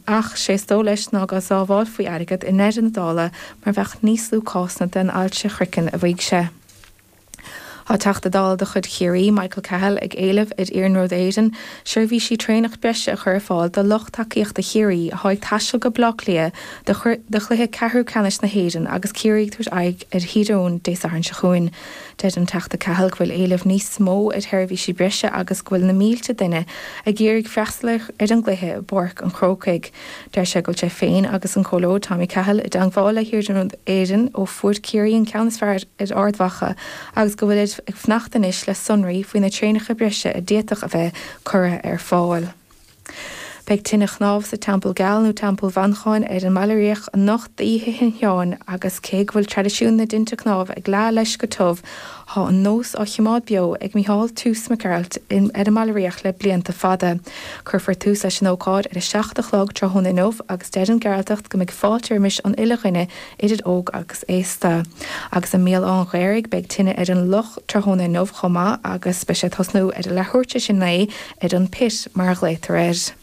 ach sé is dó' leis ná go sábháilfí airgead i ndeireadh na dála mar bheadh níos lú cásanna den ailse chroicinn, a mhaígh sé. Tá Teachta Dála de chuid Chiarraí, Michael Cahill, ag éileamh ar Iarnród Éireann seirbhísí traenach breise a chur ar fáil do lucht tacaíochta Chiarraí atá ag taisteal go Baile Átha Cliath do chluiche ceathrú ceannais na hÉireann agus Ciarraí ag tabhairt aghaidh ar Thír Eoghain Dé Sathairn seo chugainn. Deir an Teachta Cahill go bhfuil éileamh níos mó ar sheirbhísí breise agus go bhfuil na mílte duine ag iarraidh freastal ar an gcluiche i bPáirc an Chrócaigh. Deir sé go bhfuil sé féin agus an Comhairleoir Tommy Cahill i dteangmháil le hIarnród Éireann ó fuair Ciarraí an ceann is fearr ar Ard Mhacha agus go bhfuilid ag fanacht anois le sonraí faoi na traenacha breise a d'fhéadfadh a bheith curtha ar fáil. Beidh tine chnámh sa Teampall Geal, nó Teampall Mhancháin, ar an mBaile Riach anocht d'Oíche Shin Sheáin agus cé go bhfuil traidisiún na dtinte cnámh ag leá leis go tiubh, tá an nós á chimeád beo ag Mícheál Toose Mac Gearailt ar an mBaile Riach le blianta fada. Cuirfear tús leis an ócáid ar a seacht a chlog tráthnóna inniu agus deir an Gearaltach go mbeidh fáilte roimis an uile dhuine, idir óg agus aosta. Agus i mBéal Átha an Ghaorthaidh beidh tine ar an loch tráthnóna inniu chomh maith agus beidh sé ag tosnú ar a leathuair tar éis a naoi, ar an pit mar a ghlaotar air.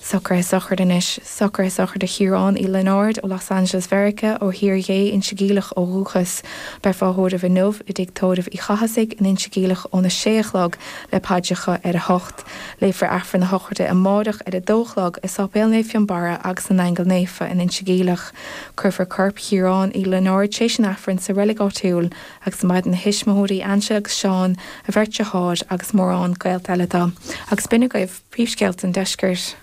Socruithe sochraide anois, socruithe sochraide Chiaráin Uí Lionáird ó Los Angeles Mheiriceá ó Thír Ghé, Inse Geimhleach ó dhúchas. Beifear á thórramh inniu i dtigh Tórraimh Uí Chathasaigh in Inse Geimhleach óna sé a chlog le paidreacha ar a hocht. Léifear Aifreann a shochraide amáireach ar a dó a chlog i Sáipéal Naomh Fionnbarra agus na nAingeal Naofa in Inse Geimhleach. Cuirfear corp Chiaráin Uí Lionáird tar éis an Aifrinn sa reilig áitiúil agus maireann a thuismitheoirí, Angela agus Seán, a bheirt deartháir agus mórán gaolta eile do. Agus b'in agaibh príomhscéalta an deiscirt.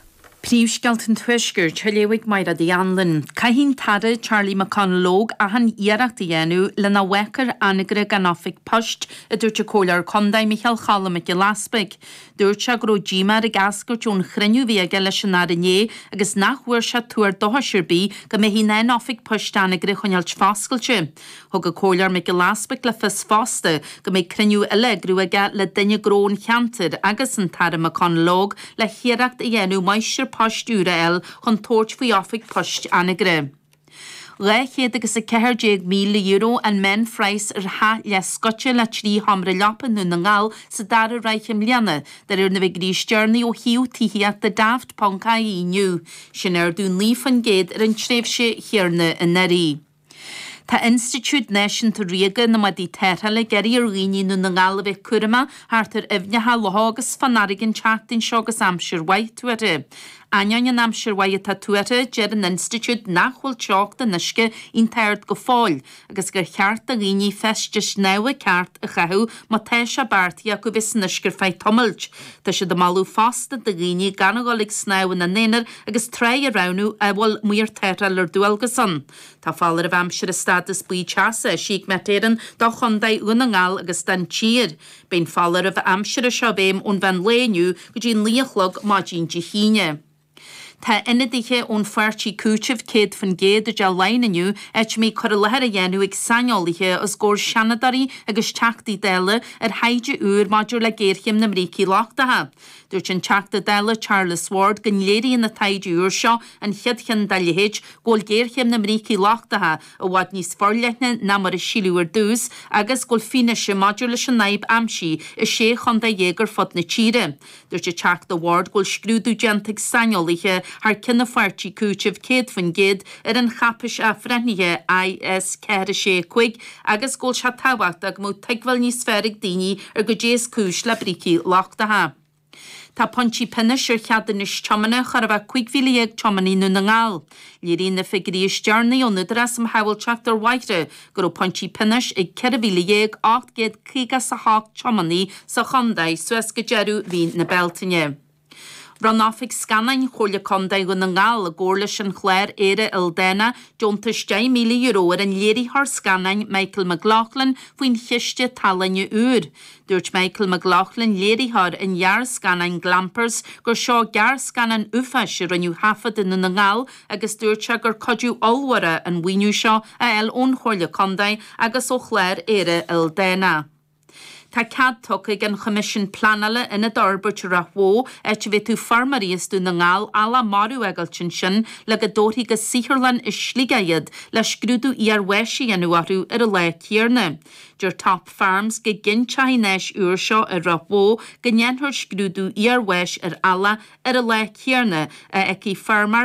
Príomhscéalta an tuaiscirt, a léifidh Máiréad Uí Anluain. Caithfidh an tAire Charlie McConalogue achan iarracht a dhéanamh le nach bhfágfar Anagaire gan oifig poist, a dúirt an Comhairleoir Contae Micheál Choilm Mac Giolla Easbuig. Dúirt sé go raibh díomá air ag eascairt ón chruinniú a bhí aige leis an Aire inné agus nach bhfuair sé tuar dóchais ar bith go mbeifí in ann oifig poist Anagaire a choinneáilt foscailte. Thug an Comhairleoir Mac Giolla Easbuig le fios fosta go mbeidh cruinniú eile á eagrú aige le daoine gnó an cheantair agus an tAire McConalogue le hiarracht a dhéanamh Máistir Poist úr a fháil chun tabhairt faoi Oifig Poist Anagaire. €214,000 an meánphraghas ar theach leathscoite le trí sheomra leapa i nDún na nGall sa dara ráithe i mbliana, de réir na bhfigiuirí is deireanaí ó shuíomh tithíochta Daft.ie inniu, sin ardú 9% ar an tréimhse chéanna anuraidh. Tá Institiúid Náisiúnta Ríoga na mBádaí Tarrthála ag iarraidh ar dhaoine i nDún na nGall a bheith cúramach thart ar aibhneacha, locha agus fán fharraige an tseachtain seo agus aimsir mhaith tuartha. Ainneoin an aimsir mhaith atá tuartha, deir an Institiúid nach bhfuil teocht an uisce iontach ard go fóill agus gur cheart do dhaoine feistis snámha ceart a chaitheamh má tá sé beartaithe acu bheith san uisce ar feadh tamailt. Tá siad ag moladh fosta do dhaoine gan a dhul ag snámh ina n-aonar agus tráigh a roghnú a bhfuil maor tarrthála ar dualgas ann. Tá foláireamh aimsire stádas buí teasa eisithe ag Met Éireann do Chontae Dhún na nGall agus don tír. Beidh an foláireamh aimsire seo i bhfeidhm ón mheán lae inniu go dtí an naoi a chlog maidin Dé hAoine. Tá ionadaithe ón pháirtí Cúiteamh 100% i dTeach Laighean inniu, áit a mbeidh cur i láthair á dhéanamh ag saineolaithe os gcomhair Seanadóirí agus Teachtaí Dála ar thaighde úr maidir le géarchéim na mbrící lochtacha. Dúirt an Teachta Dála Charles Ward go léiríonn an taighde úr seo, an chéad cheann dá leithéid, go bhfuil géarchéim na mbrící lochtacha i bhfad níos forleithne ná mar a síleadh ar dtús agus go bhfuil fianaise maidir leis an fhadhb aimsithe i sé chontae dhéag ar fud na tíre. Dúirt an Teachta Ward go bhfuil scrúdú déanta ag saineolaithe thar ceann a pháirtí, Cúiteamh 100%, ar an cháipeis athbhreithnithe IS 465 agus go bhfuil sé tábhachtach go mbeadh tuigbheáil níos fearr ag daoine ar goidé is cúis le brící lochtacha. Tá pointí pionóis ar cheadúnais tiomána chóir a bheith 15,000 tiománaí i nDún na nGall. Léiríonn na figiúirí is deireanaí ón Údarás um Shábháilteacht ar Bhóithre go raibh pointí pionóis ag 14,858 tiománaí sa chontae suas go deireadh mhí na Bealtaine. Bhronn Oifig Scannáin Chomhairle Contae Dhún na nGall, i gcomhar leis an chlár Éire Ildánach, deontas €10,000 ar an léiritheoir scannáin Michael McLaughlin faoin chiste tallainne úr. Dúirt Michael McLaughlin, léiritheoir an ghearrscannáin Glampers, gur seo gearrscannán uafáis a rinneadh a thaifead i nDún na nGall agus dúirt sé gur cuidiú ollmhór é an mhaoiniú seo a fháil ón Chomhairle Contae agus ó Chlár Éire Ildánach. Tá cead tugtha ag an Choimisiún Pleanála ionad a fhorbairt i Ráth Bhoth, áit a bhféadfadh feirmeoirí as Dún na nGall eallach marbh a fhágáilt ansin le go dtabharfaí go saotharlann i Sligeach iad le scrúdú iar-bháis a dhéanamh orthu ar an lá céarna. Deir Top Farms go gcinnteoidh an áis úr seo i Ráth Bhoth go ndéanfar scrúdú iar-bháis ar eallach ar an lá céanna a fhágfaidh feirmeoir